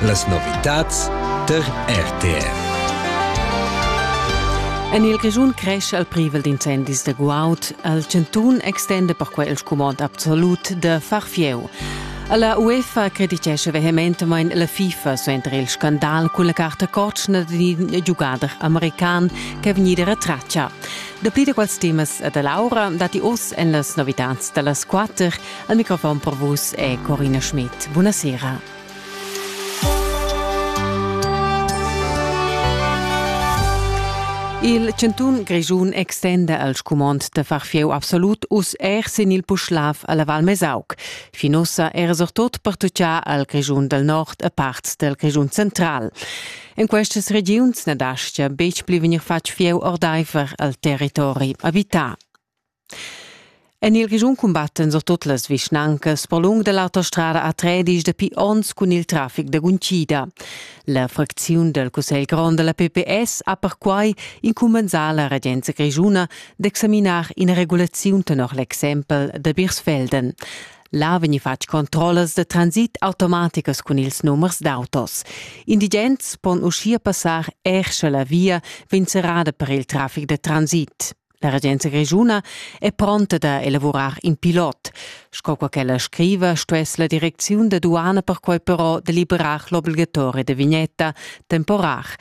Las novitads tar RTR. En il Grischun crescha il privel d'incendis da guaud. Il chantun extenda perquai il scumond absolut da far fieu. La UEFA creditescha vehementamain la FIFA suenter il scandal cun la carta cotschna d'un giugader american ch'è vegnida retratga. Dapli da quels temas da Laura datti oz en las novitads da las quatter. Al microfon per vus è Corina Schmidt. Buonasera. Il chantun Grischun extenda al scumond da far fieu absolut uss er sin il Puschlav alla Val Mesauc. Fin ussa era surtut pertuccà al Grischun dal nord e parts dal Grischun central. En questas regiuns na dastga betg pli vegnir fatg fieu ordaifer al territori abità. En il Grischun cumbattan surtut las vischnancas per lung da l'autostrada A3 dapi onns cun il traffic da guntgida. La fracziun dal Cussegl grond da la PPS ha perquai incumbensà la regenza grischuna d'examinar ina regulaziun tenor l'exempel da Birsfelden. Là vegni fatg controllas da transit automaticas cun ils numers d'autos. Indigents pon uschia passar er sche la via vegn serrada per il traffic da transit. La regenza grischuna è pronta da elavurar in pilot. Sco qua ch'ella scriva, stuess la direcziun da duana perquai però deliberar l'obligatoria da vignetta temporar.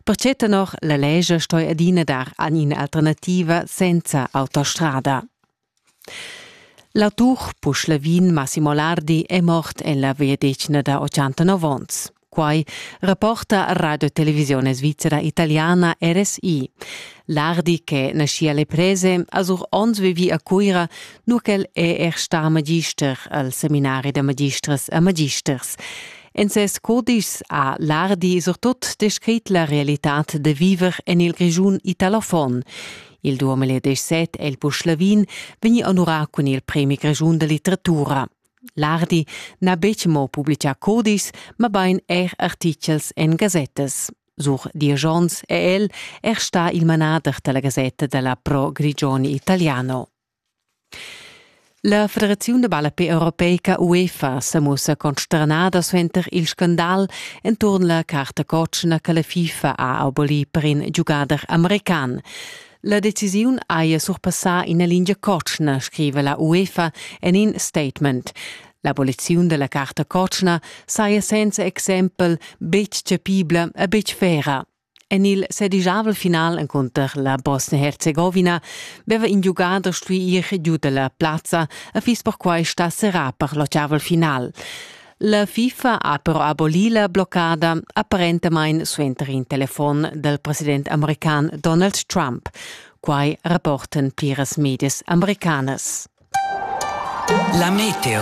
Pertge tenor la legge stoi adina dar an in'alternativa senza autostrada. L'autur puschlavin Massimo Lardi è mort en la veadetgna da 89 onns. Quai rapporta Radio Televisione Svizzera Italiana RSI. Lardi che naschia le prese a sur ons vivi a Cuira, nur ch'el è er star magister al seminari da magistras e magisters. En ses codice ha Lardi surtut descrit la realitad de viver en il Grigiun italofon. Il 2017 è il Puschlavin vegni onorà cun il Premi Grigiun de Litteratura. L'Ardi n'ha betg mo publitgà cudis, mabain er artitgels en gasettas. Sur diesch onns è el er stà il manader da la gasetta da la Pro Grigioni Italiano. La Federaziun da ballape europeica UEFA sa mussa consternada suenter il scandal enturn la carta cotschna che la FIFA ha abolì per in giugader american. La decisiun haja surpassà ina lingia cotschna, scriva la UEFA en in statement. L'aboliziun della carta cotschna saja senza exempel betg chapibla e betg vera. En il sedigiavel final encunter la Bosnia-Herzegovina veva in giugader stuì ir giu dalla plazza e fiss perquai stà serrà per l'otgavel final. La FIFA ha però abolì la bloccada apparentamain suenter in telefon dal president american Donald Trump. Quai rapportan pliras medias americanas. La meteo.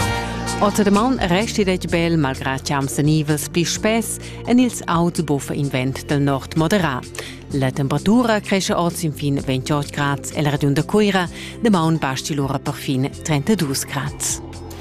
Otterman resti detg bel malgrà champs nivels pli spess en ils auts buffa invent del nord moderà. La temperatura cresce oz in fin 28 grads el ragion da Cuira, de maun basti lura per fin 32 grads.